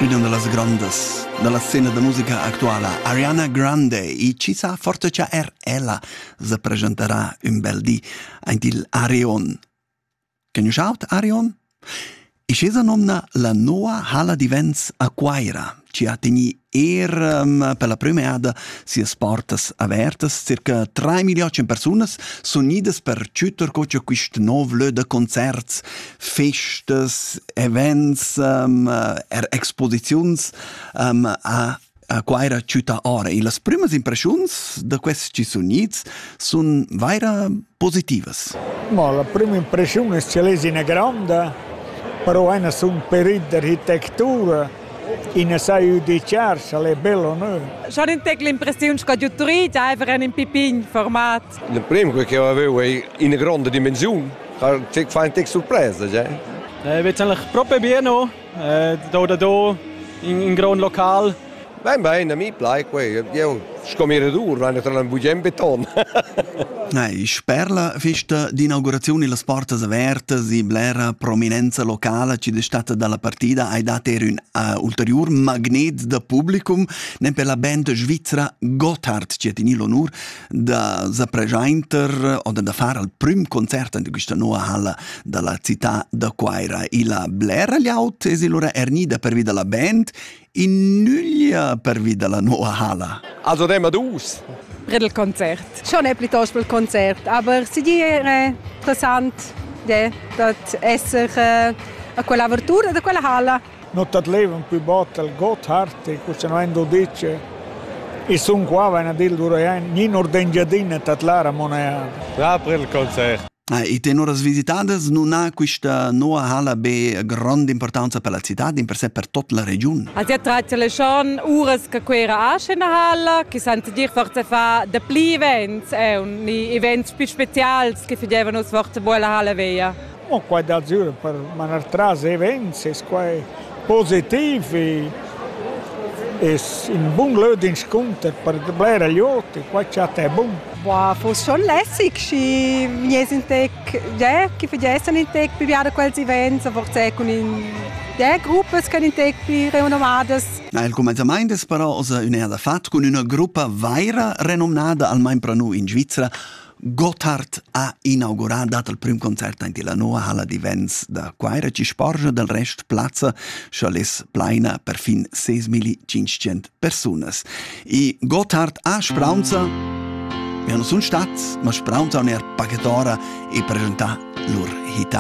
Üna da las grondas da la scena da musica actuala, Ariana Grande, i chi sa forte cha er ella se presenterà ün bel di aint il Arion. Conoschaut Arion? I chesa nomna la noa hala di vents Aquaira ci ha tegni ehm, per la prüm'eada sias portas avertas. Circa 3 miliarden persunas sun idas per tschütter co cha quist nov lö da concerts, festas, events, ehm, er exposiziuns ehm, a a Quaira città ora. E las prümas impreschiuns da quests ci sun its sun vaira positivas. Mo la prima impressiun es cha l'es ina gronda, però ena sun perit d'architectura, ina sai üdichar, scha'l è bel o nö. Schon in tec l'impressiun sco giutturit aiver en in pipin format. Il primo che avevo è una grande dimensione, fa un tec surpresa, cioè. È eh, eigentlich probieren Do da do in, in grond local. Bein, bein, a mi plai quei. Eu sco mirador, vai naturalment bugen beton. Nein, sper la festa d'inaugurazione las portas avertas e blera prominenza locala ci d'estate dalla partida hai dat er un uh, ulterior magnet da publicum, nem per la band svizzera Gotthard ci ha teni l'onur da za pregiainter o da far al prüm concert in quista nova halla da la città da Cuaira. Illa blera llaut es illura ernida pervi da la band, in nüglia pervi da la nova halla. Also demma dus. Bred il concert. Schon è piuttosto il concert, aber si dire interessant de, dat esser eh, a quella avertura de quella halla. nu tadlevan pü bod al Gotthardti cussanond o dir che i sun qua vain a dir l'urajan nin or d'Engiadina tadlar amo neir. Dapre il concert. Ah, e tenoras visitadas nun ha quista noa hala be grand'importanza per la città, in per se per tot la regiun. Als ja tradizion uras che quera asche na hala, chi sant dir forse fa de pli events, e un events più specials che fagevan us forse buola hala veia. Mo quai d'azur per manar tras events es quai positiv e es ün bun lö d'inscunter per bler glüot e quai cha t'è bun. Boah, fus schon lässig, schi wir sind tec, ja, chi fagessan in tec più biada quels events, a forza cun in ja, gruppas ch'en in tec pli renommadas. Na, il cumenzamaint es però oza ün'eada fat cun üna gruppa vaira renomnada, almain pro nu in Svizra, Gotthard ha inaugurà dat il prüm concert aint illa noua ha'la divens da Cuaira chi sporgia del rest plazza scha less plaina perfin 6500 persunas. E Gotthard a Spraunza Ja non sun stats, ma Spraunza on er paghetora e presentà lur hita.